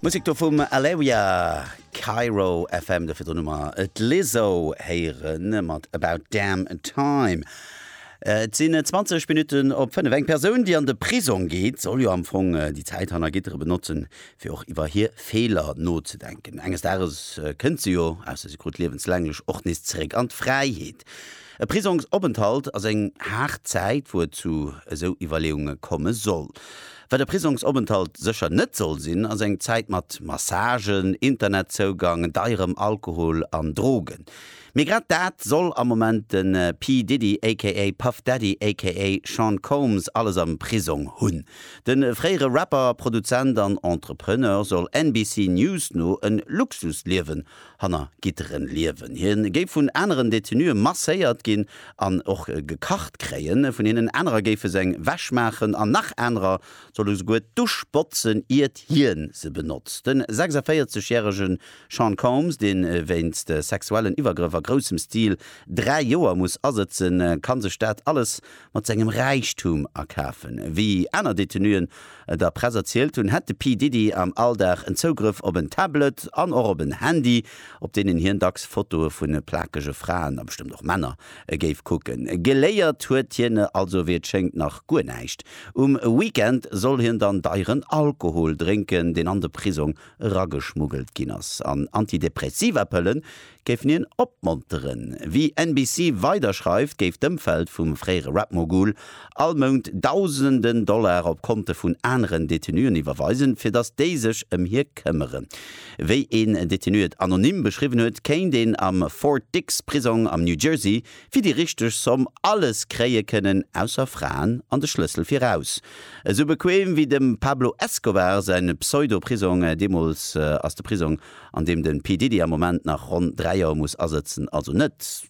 Musik do vum Aleria, Cairo FM, do virdrun hu mer et Lizzo héieren mat About Damn Time. Äh, et sinn 20 Minutten op 5. Eng Persoun, déi an de Prisong geet, soll jo am Fong äh, déi Zäit hanner Gitteren benotzen, fir och iwwer hir Feeler nozedenken. Enges Dages äh, kënnt se jo, ausser se krut liewenslänglech, och nees zeréck an d'Fräiheet. E Prisongsopenthalt ass eng haart Zäit, wou et zu esou Iwwerleeunge komme soll. Wat e Prisongsopenthalt sécher net soll sinn, ass eng Zäit mat Massagen, Internetzougang, deirem Alkohol an Drogen. Mee grad dat soll am Moment de P. Diddy aka Puff Daddy aka Sean Combs alles am Prisong hunn. De fréiere Rapper, Produzent an Entrepreneur soll NBC News no e Luxusliewen hanner Gitteren liewen. Hie géif vun aneren Detenue masséiert ginn an och gekacht kréien. Vun hinnen anerer géife se eng Wäsch maachen an nach anerer solle souguer d'Dusch botzen, iert hien se benotzt. De 46 järege Sean Combs, dee wéinst sexuellen Iwwergrëff a groussem Stil dräi Joer muss asëtzen, ka sech dat alles mat sengem Räichtum akafen. Wéi aner Detenuen der Press erzielt hunn, hätt de P-Diddy am Alldag en Zougrëff op en Tablet an och op en Handy, op deenen hien dacks Fotoe vu plakege Fraen, a bestëmmt och Männer, géif kucken. Geléiert huet hien also, wéi et schéngt, nach guer näischt. Um Weekend soll hien dann deieren Alkohol drénken, deen an de Prisong erageschmuggelt ginn ass. An Antidepressiva-Pëlle géifen hien opmonteren. Wéi NBC weider schreift, géif d'Ëmfeld vum fréiere Rap-Mogul all Mount Dausenden Dollar op Konte vun aneren Detenuen iwwerweisen, fir datt déi sech ëm hie këmmeren. Wéi een Detenu et anonym beschriwwen huet, kéint een am Fort Dix Prisong am New Jersey fir déi richteg Somm alles kréie kënnen, ausser Fraen an de Schlëssel fir raus. Esou bequem wéi dem Pablo Escobar säi Pseudo-Prisong deemools ass de Prisong an deem den P. Diddy am Moment nach ronn 3 Joer muss asëtzen, also net.